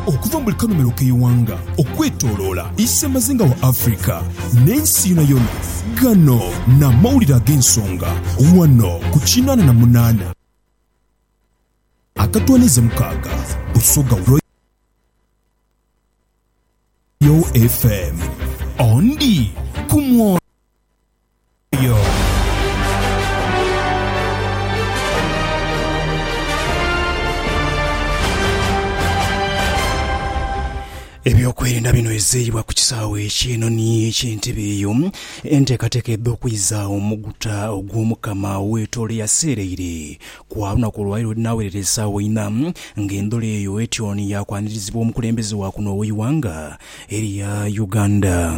Okuva mu buli kanhumilo k'eighanga okwetoloola isemazinga wa Africa n'ensi yonayona, gano n'amawulire ag'ensonga ghano ku kinaana na munaana. Akatwanize mukaaga Busoga Royal FM. Ondi ku mwo. yo. Ebyokwerinda bino ezeeyibwa ku kisaawe ekyenoni eky'entebe eyo enteekateeka edha okwiza omuguta ogw'omukama weetoolo eyaseereire ku lunaku olwaleero edinaawerera esaawa ina ng'endhola eyo etyoni yaakwanirizibwa omukulembeze wa kuno ow'eighanga erya Uganda.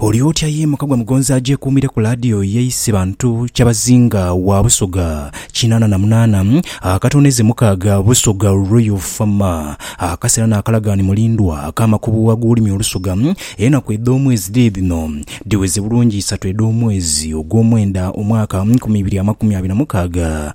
Oli otya ye muka gwa Mugonzi agyekuumire ku laadiyo ye ise Bantu Kyabazinga wa Busoga kinaana na munaana akatooneze mukaaga Busoga Royal Fama Akasera n'akalagaani Mulindwa ak'amakubu ag'olulimi Olusoga Enaku edh'omwezi dhiri dhino dhiweze bulungi isatu edh'omwezi ogw'omwenda omwaka nkumi ibiri amakumi abiri na mukaaga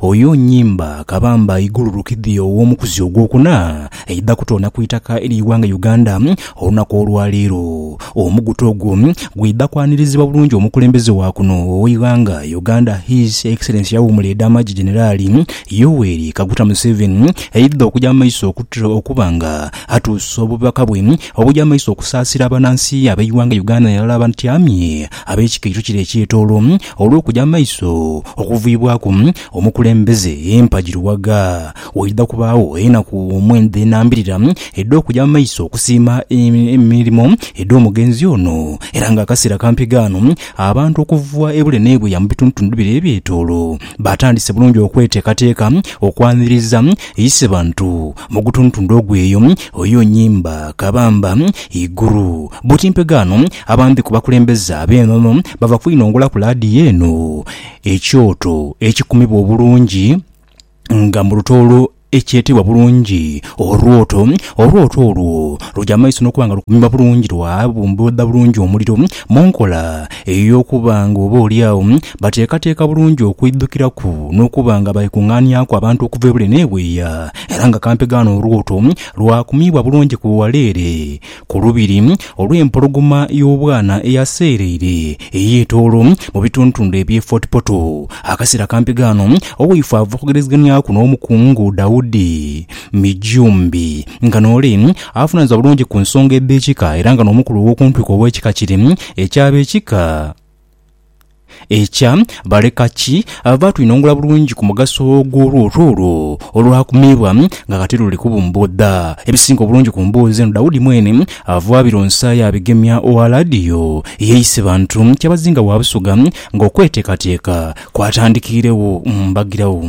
Oyo nnyimba kabamba igululukidhi ow'omukuzi ogwokuna eidha kutoona ku itaka ery'eighanga Uganda olunaku olwaleero. Omugutu ogwo gwidha kwanirizibwa bulungi omukulembeze wa kuno ow'eighanga Uganda His Excellency Awuumule Ed'amagye Generali Yoweri Kaguta Museveni aidha okuja mu maiso okuba nga atuusa obubaka bwe obuja mu maiso okusaasira abanansi ab'eighanga Uganda nairala abatyamye ab'ekika ekyo kire eky'etoolo Olw'okuja mu maiso okuviibwaku omukulembeze empagi luwaga, waidha kubaagho enaku omwenda enambirira edh'okuja mu maiso okusiima emirimo edh'omugenzi ono era nga akaseera kampi ghano abantu okuva ebule n'ebuya mu bitundhutundu bire ebyetoolo batandise bulungi okweteekateeka okwaniriza Isebantu mu gutundhutundu ogw'eyo. Oyo Nyimba, Kabamba, Iguru, Butimpe ghano Abandi ku bakulembeze ab'enono bava kwinongola ku laadiyo eno ekyoto ekikumibwa obulungi nga mu lutoolo ekyetebwa bulungi Orwoto. Orwoto olwo luja mu maiso n'okuba nga lukumibwa bulungi lwa bumbibwa bulungi omuliro mu nkola ey'okuba nga oba oli agho bateekateeka bulungi okwidhukiraku n'okuba nga baikung'aaniaku abantu okuva ebule n'ebweya era nga kampegaano Orwoto lwakumiibwa bulungi ku wala ere Ku lubiri olw'empologoma y'obwana eyaseereire ey'etoolo mu bitundutundu eby'e Fort Portal, akaseera kampi ghano, owaifo ava okugerezeghanyaku n'Omukungu Daudi Mijumbi nga n'ole avunanizibwa bulungi ku nsonga edh'ekika era nga n'omukulu ow'okuntwiko ow'ekika kire eky'Abekika. Ekya baleka ki? Baatwinongula bulungi ku mugaso gw'olwoto olwo olwakumiibwa nga kati luli kubumbuudha. Ebisinga obulungi ku mboozi eno Daudi mwene ava abironsa yaabigemya owa laadiyo eyeeyise bantu kyabazinga wa Busoga ng'okweteekateeka kwatandikiiregho mu mbagirawo.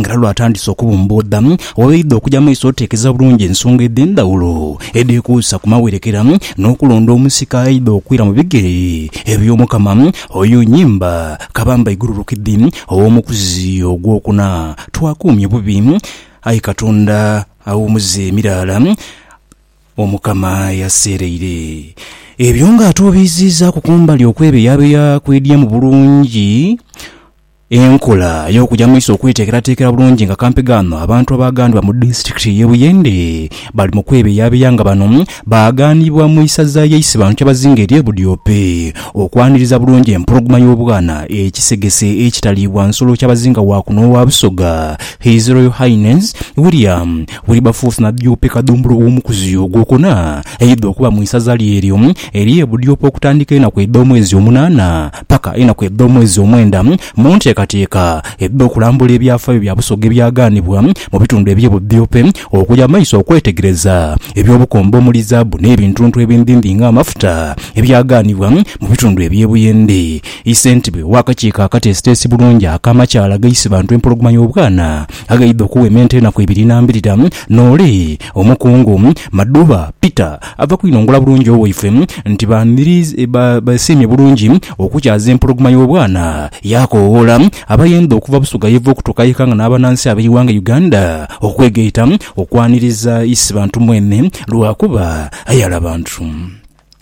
Nga era lw'atandise okubumbuudha, wabaidha okuja maiso oteekeza bulungi ensonga edh'endhawulo edhekuusa ku mawerekera n'okulonda omusika aidha okwira mu bigere eby'Omukama oyo Nyimba Kabamba Igululukidhi ow'omukuzi ogw'okuna. Twakuumye bubi, aye Katonda awumuza emiraala Omukama yaseereire. Ebyo ng'atuubiiziizaaku kumbali okwebeyabeya kw'edyamu bulungi Enkola y'okuja mu maiso okweteekerateekera bulungi nga kampi ghano abantu abaaghanibwa mu disitulikiti y'e Buyende bali mu kwebeyabeya nga bano baaghanibwa mu isaza y'e Isebano kyabazinga ery'e Budiope okwaniriza bulungi empologoma y'obwana ekisegese ekitaliibwa nsolo kyabazinga wa kuno owa Busoga His Royal Highness William Wilberforce Nabyope Kadhumbulu ow'omukuzi ogwokuna aidha okuba mu isaza lye eryo ery'e Budiope okutandika enaku edh'omwezi omunaana paka enaku edh'omwezi omwenda mu nteekateeka edh'okulambula ebyafaayo bya Busoga ebyagaanibwa mu bitundu eby'e Budhiope okuya mu maiso okwetegereza eby'obukombe omuli zaabu n'ebintuntu ebindhindhi nga amafuta ebyagaanibwa mu bitundu eby'e Buyende. I Ssentebe w'akakiiko akateesiteesi bulungi ak'amakyaalo agaise bantu empologoma y'obwana aghaidha okuwementa enaku ibiri n'ambirira n'ole Omukungu Madhuba Peter Ava kwinongola bulungi owaifwe nti basiimye bulungi okukyaza empologoma y'obwana, yaakoowoola abayenda okuva Busoga yeva okutuuka ye Kanga n'abanansi ab'eighanga Uganda okwegaita okwaniriza Isibantu mwene lwakuba ayala bantu.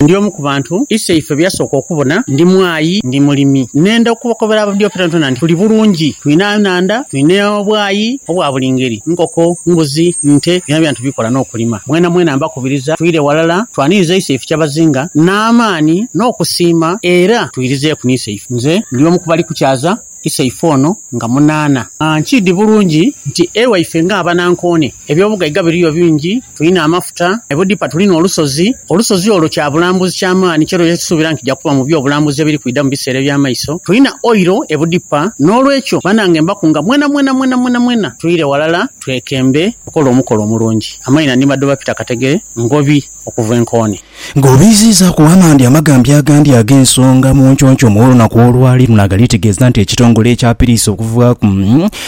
Ndi omu ku bantu Iseifwe be yasooka okubona. Ndi mwayi, ndi mulimi. Nenda okubakobera ababidyo fyonakyona nti tuli bulungi, twina enhandha, twina obwayi obwa buli ngeri, nkoko, mbuzi, nte, byonabyona tubikola n'okulima. Mwenamwena mbakoowoola. kukubiriza twire ghalala twaniriza iso ife kyabazinga n'amaani n'okusiima era twirizeeku n'iso ife. Nze ndi omu ku bali kukyaza iso ife ono nga munaana. Nkiidhi bulungi nti ewaife nga abanankoone eby'obugaiga biriyo bingi, tulina amafuta, e Budipa tulina olusozi, olusozi olwo kya bulambuzi kya maani kye tugya kusuubira nti kija kuba mu by'obulambuzi ebiri kwidha mu biseera eby'amaiso, tulina oil e Budipa n'olwekyo banange mbakunga mwenamwena mwenamwena mwena twire ghalala. Twekembe okola omukolo omulungi. Amaina ni Madoba Peter Kategere, Ngobi, okuva e Nkooni. Nga obiiziizaaku amandi amagambya agandi ag'ensonga mu nconco mw'olunaku olwali luno agalitegeeza nti ekitongole ekya piriisi okuvaaku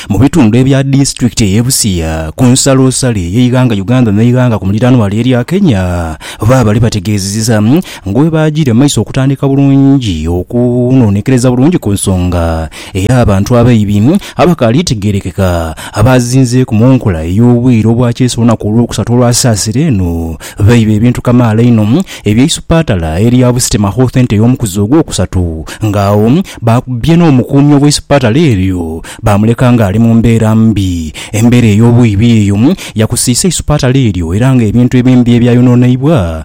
mu bitundu ebya disitulikiti ey'e Busia ku nsalosalo ey'eighanga Uganda n'eighanga ku muliranwa erya Kenya baabale bategeezeza nga bwebaagiire mu maiso okutandika bulungi okunoonekereza bulungi ku nsonga Era abantu abaibi abakaali tegerekeka abaazinzeeku mu nkola ey'obwire obwa kyeeso olunaku olwokusatu olwa Saasira eno, baiba ebintu kamaala inho eby'eisupaatala erya Busite Makhothente ey'omukuzi ogwokusatu nga agho baakubbye n'omukuumi ow'eisupaatala eryo baamuleka nga ali mu mbeera mbi. Embeera ey'obwibi eyo yakusiisa eisupaatala eryo era nga ebintu ebimbi ebyayononeibwa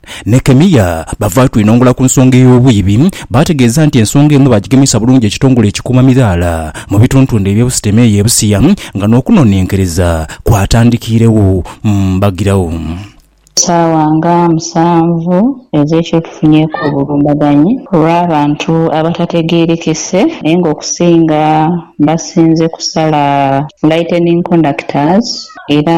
Nekemiya bava twinongula ku nsonga ey'obwiibi, baategeeza nti ensonga eno baagigemesa bulungi ekitongole ekikuuma midhaala mu bituntundhe eby'obusitema eyo e Busia nga n'okunonenkereza kwatandikiiregho mbagiragho. Saawa nga musanvu ez'ekiro tufunyeeku obulumbaganyi olw'abantu abatategerekese naye nga okusinga basinze kusala lightening conductors era.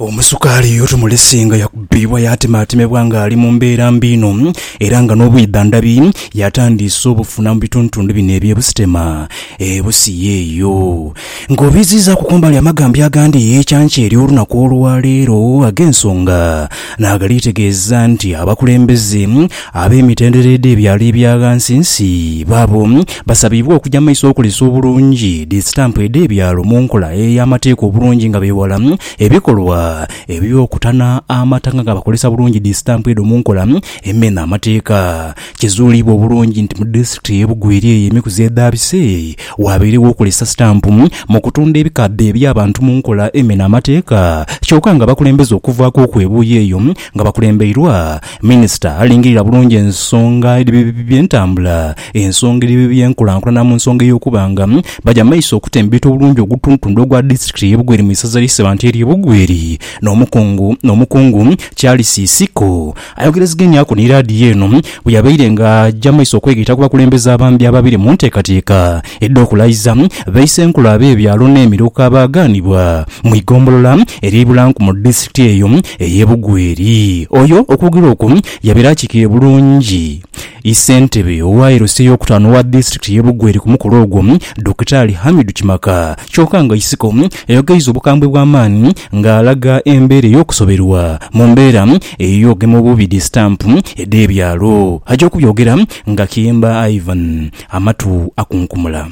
Omusukaali oyo tumulese nga yakubibwa yaatimaatimibwa ng'ali mu mbeera mbi inho era nga n'obwidha ndhabi yatandiise obufuna mu bituntundu bino eby'e Busitema e Busia eyo. Ng'obiiziizaaku ku mbali amagambya agandi, ekya nkya ery'olunaku olwaleero ag'ensonga Naagaliitegeeza nti abakulembeze ab'emitendera edh'ebyalo ebya ghansinsi baabo basabiibwa okuja mu maiso okolesa obulungi dhi sitampu edh'ebyalo mu nkola ey'amateeka obulungi nga beewala ebikolwa eby'okutana amata nga bakolesa bulungi dhi sitampu edho mu nkola emena amateeka. Kizuuliibwa obulungi nti mu disitulikiti ey'e Bugweri eyo emikuzi edhaabise, waabairegho okozesa sitampu mu kutunda ebikadde eby'abantu mu nkola emena amateeka kyoka nga abakulembeze okuvaaku okwebuuya eyo nga bakulembeirwa Minisita alingirira bulungi ensonga edh'ebyentambula, ensonga edh'ebyenkulankulana mu nsonga ey'okuba nga baja mu maiso okutembeeta obulungi ogutundutundu ogwa disitulikiti ey'e Bugweri mu isaza ly'e Ssebanti ery'e Bugweri n'omukungu Charles Isiko. Ayogerezegeniaku ni laadiyo eno bwe yabaire nga aja maiso okwegaita ku bakulembeze abambi ababiri mu nteekateeka edh'okulayiza baisenkulu ab'ebyalo n'emiruka abaagaanibwa mu igombolola erye Ibulanku mu disitulikiti eyo ey'e Bugweri. Oyo okwogera okwo yabaire akiikirire bulungi ssentebe owa LC ey'okutaano owa disitulikiti y'e Bugweri ku mukolo ogwo, Dokita Ali Hamidu Kimaka kyoka nga Isiko yayogeiza obukambwe bw'amaani ng'alaga embeera ey'okusoberwa mu mbeera Eyo ge mu bubi dhi stamp edhe byalo. Aja okubyogera nga kiyemba Ivan amatu akunkumula.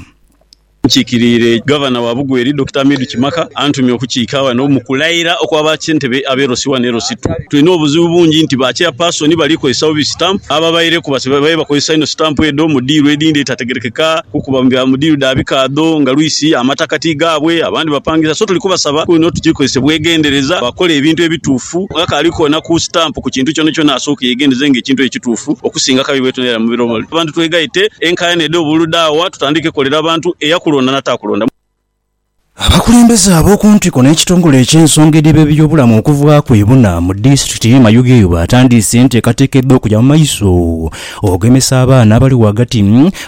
Nkiikiriire Gavana wa Bugweri, Dokita Hamidu Kimaka antumye okukiika ghano mu kulaira okwa ba Ssentebe ab'e Ross I n'e Ross ii. Tulina obuzibu bungi nti ba Chairperson bali kozesa bubi stamp ababaireku babaire bakozesa inho stamp edho mu diiru edhindi edhitategerekeka kukuba mu diiru dha bikaadho nga lwisi amataka ti gaabwe abandi bapangisa so tuli kubasaba kwiino tugikozese bwegendereza bakole ebintu ebituufu Ghakaali kwonaku sitampu ku kintu kyonakyona asooke yeegendereze nga ekintu ekyo kituufu okusinga akabi bwetunaira mu biro bino. Abantu twegaite, enkaayana edhe obululu dhaagha, tutandike kolera bantu, eyakulonda n'ataakulonda. Abakulembeze ab'oku ntiko n'ekitongole eky'ensonga edhiba eby'obulamu okuva ku ebuna mu disitulikiti y'e Mayuge batandiise enteekateeka edh'okuja mu maiso Ogemesa abaana abali ghagati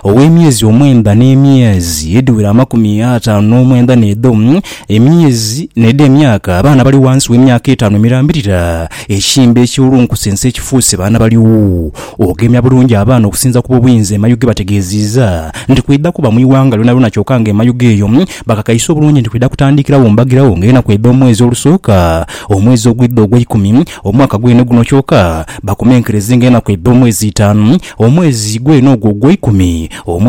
gh'emyezi omwenda n'emyezi edhiwera amakumi ataanu n'omwenda n'edho emyezi n'edho emyaka abaana abali ghansi w'emyaka etaanu emirambirira ekimbe ekiwulunkusense ekifuuse baana baligho. Ogemya bulungi abaana okusinza ku bw'obuyinza emayuge bategeeziiza nti kwidha kuba mu ighanga lyonalyona kyoka nga emayuge eyo bakakaise obulungi nti kwidha kutandiikiragho mbagiragho ng'enaku edh'omwezi olusooka omwezi ogwidha ogweikumi Omwaka gwene guno kyoka bakomenkerezenga enaku eidha omwezi itaanu, omwezi gweene ogwo ogweikumi, omwaka.